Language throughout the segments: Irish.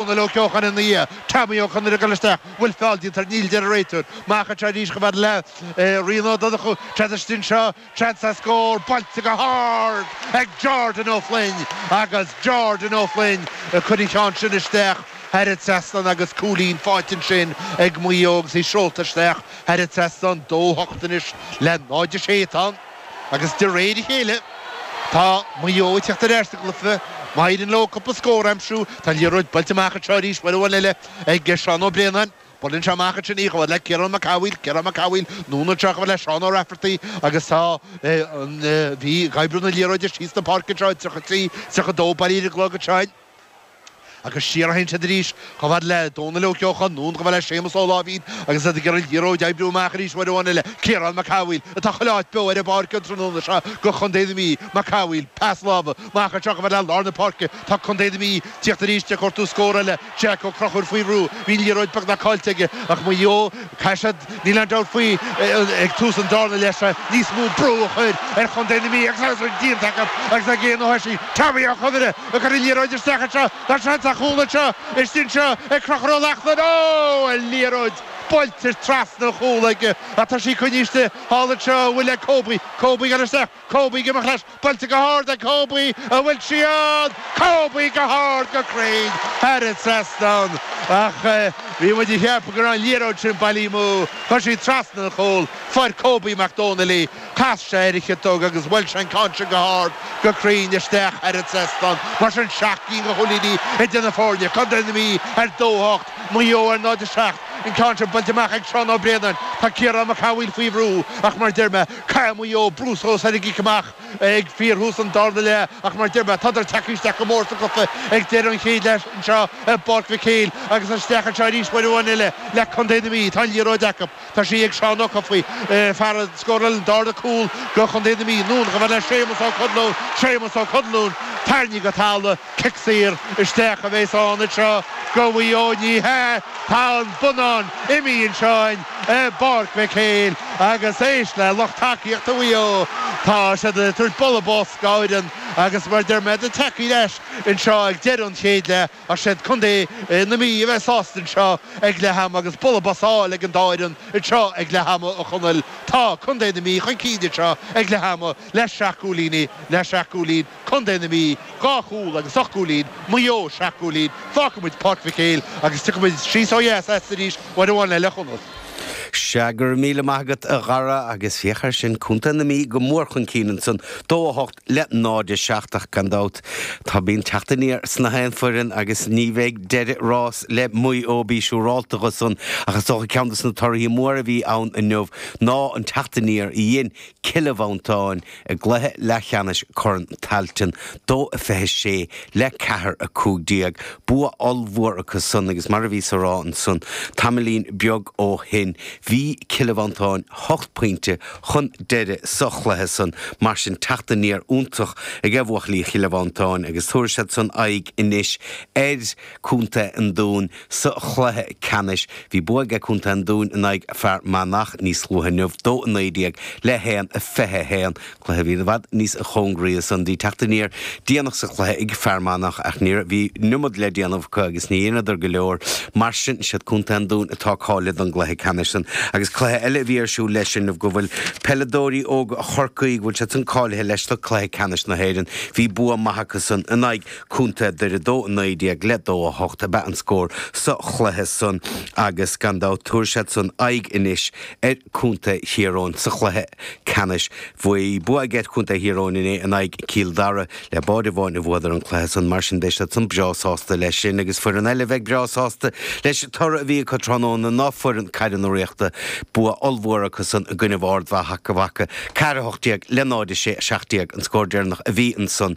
Dónall Ó Ceocháin ina dhiaidh, Tommy Ó Conaire ag dul isteach, bhfuil feall déanta air, níl a deir an réiteoir, amach anseo arís chomh fada le Rian Ó Donnchú, tá sé istigh anseo, seans ar scór, buailte go hard ag Jordan Ó Floinn agus Jordan Ó Floinn ag cur an cheann sin isteach thar an trasnán agus cúilín fáighte ansin ag Maigh Eo agus í seolta isteach thar an trasnán, 2-8 anois le 0-6 atá ann. Agus de réir a chéile, tá Maigh Eo ag tíocht ar ais sa gcluiche. Má éiríonn leo cúpla scór a aimsiú, tá an liathróid buailte amach anseo arís, uair amháin eile ag Seán Ó Braonáin. Buaileann sé amach ansin í, chomh fhad le Ciarán Mac Cathmhaoil. Ciarán Mac Cathmhaoil, anonn anseo, chomh fhad le Seán Ó Raifeartaigh agus tá an Mhí ag oibriú na liathróide síos na páirce anseo. 33, 32 bailithe ar an gclog anseo. agus siar a théann siad arís chomh fad le Dónall Ó Ceocháin, anonn chomh fad le Séamus Ó Láimhín agus iad ag iarraidh liathróid a oibriú amach arís uair amháin eile, Ciarán Mac Cathmhaoil, atá chuile áit beo ar an bpáirc an tráthnóna seo go Chontae na Mí, Mac Cathmhaoil, pas láimhe, amach anseo chomh fad le lár na páirce, tá Contae na Mí tíocht arís ag cuartú scór eile, Jack Ó Crochúir faoi bhrú, bhí an liathróid beagnach caillte aige ach Maigh Eo Tá siad, níl aon dabht faoi, ag tús an darna leath seo, níos mó brú a chur ar chontae na Mí agus agus an díon tagtha agus na géanna thoisi. Tommy Ó Conaire ag cur an liathróid isteach anseo, tá seans ar chúl anseo istigh anseo ag Crochúr Ó Lachtnáin. Ó! An liathróid buailte trasna an chúl aige ach tá sí coinnithe istigh thall anseo, chomh fad le Kobe. Kobe ag dul isteach. Kobe ag imeacht leis, buailte go hard ag Kobe an bhfuil sí ann! Kobe go hard, go cruinn, thar an trasnán. Ach bhí muid a cheapadh go raibh an liathróid sin bailithe amú. Chuaigh sí trasna an chúil, fuair Kobe Mac Domhnaill í, chas sé ar a chiotóg agus bhuail sé an ceann sin go hard, go cruinn, isteach thar an trasnán. Mar sin, seacht gcinn de chúilíní idir na foirne, Contae na Mí ar dó a hocht, Maigh Eo ar náid a seacht. An ceann sin buailte amach ag Seán Ó Braonáin. Tá Ciarán Mac Cathmhaoil faoi bhrú ach mar deir mé, Tá Maigh Eo ag brú suas ar an gcic amach ag fíorthús an darna leath, ach mar deir mé, tádar tagtha isteach go mór sa gcluiche ag deireadh an chéid leath anseo i bPáirc Mhic Héil agus isteach anseo arís uair amháin eile le Contae na Mí. Tá an liathróid acu. Tá sí ag Seán Ó Cofaigh, fear a scóráil an darna cúl do Chontae na Mí. Anonn chomh fad le Séamas Ó Conluain. Séamas Ó Conluain, tarraingthe go talamh. Cic saor isteach a bheas ann anseo go Mhaigh Eo. Ní hea, tá an bonnán imithe anseo i bPáirc Mhic Héil agus éist le lucht tacaíochta Mhaigh Eo. Tá siad ag tabhairt bualadh bos dá bhfoireann agus mar a deir mé tádar tagtha leis anseo ag deireadh an chéid leath ach is iad contae na Mí a bheas sásta anseo ag leath ama agus bualadh bos á fháil ag an dá fhoireann anseo ag leath ama a Chonaill. Tá contae na Mí chun cinn anseo ag leath ama le seacht gcúilín le seacht gcúilín. Contae na Mí, dhá chúl agus ocht gcúilín, Maigh Eo, seacht gcúilín, fágfaidh muid Páirc Mhic Éil agus tiocfaimid síos ó dheas arís, uair amháin le Conall. Sea, go raibh míle maith agat, a Dhara, agus féach air sin, Contae na Mí go mór chun cinn ansan, dó a hocht le náid a seacht, ach gan dabht, tá bíonn teacht aniar sna haon foireann agus ní bheidh deireadh ráis le Maigh Eo, bí siúrálta dho san, ach is dócha ceann de sna torthaí móra a bhí ann inniu ná an teacht aniar a dhein Cille Mhantáin, I gcluiche leathcheannais Chorn Tailteann, dó a fiche a sé le ceathair a cúig déag, bua ollmhór acu san agus mar a bhíos a rá ansan tamaillín beag ó shin, bhí Cille Mhantáin hocht bpointe chun deiridh sa chluiche san. Mar sin, teacht aniar iontach ag buachaillí Chille Mhantáin agus tabharfaidh siad san aghaidh anois ar. Co. an Dúin, sa chluiche ceannais. Bhí bua ag Co. an Dúin in aghaidh Fear Manach níos luaithe inniu, 2-19 le 1-21, cluiche a bhí i bhfad níos cóngaraí san. Bhí teacht aniar déanach sa chluiche ag Fear Manach ach níorbh, bhí niomad le déanamh acu agus ní dheineadar go leor. Mar sin, is iad Co. an Dúin atá cáilithe don gcluiche ceannais san agus cluiche eile a bhí ar siúl leis inniu go bhfuil peileadóirí óga Chorcaí, go bhfuil siad san cáilithe leis do chluiche ceannais na hÉireann. Bhí bua maith acu san in aghaidh. Contae Dhoire dó a 19 le dó a hocht ab ea an scór sa chluiche san agus gan dabht tabharfaidh siad san aghaidh anois ar Contae Thír Eoghain sa chluiche ceannais. Bhí bua ag ag Contae Thír Eoghain inné in aghaidh Chill Dara. Le báide amháin a bhuadar an cluiche san, mar sin beidh siad san breá sásta leis sin agus foireann eile a bheidh breá sásta leis an toradh a bhí acu tráthnóna ná foireann Caire na Ríochta. Bua ollmhór acu san i gcoinnibh Ard Mhacha, Ard Mhacha, 4 18 le 0 6 17 an scór deireanach a bhí ansan.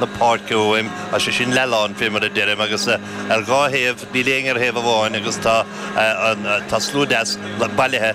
na páirce uaim, tá sé sin leath-lán, fé mar a deirim, agus ar dhá thaobh, níl éinne ar thaobh amháin agus tá slua deas bailithe.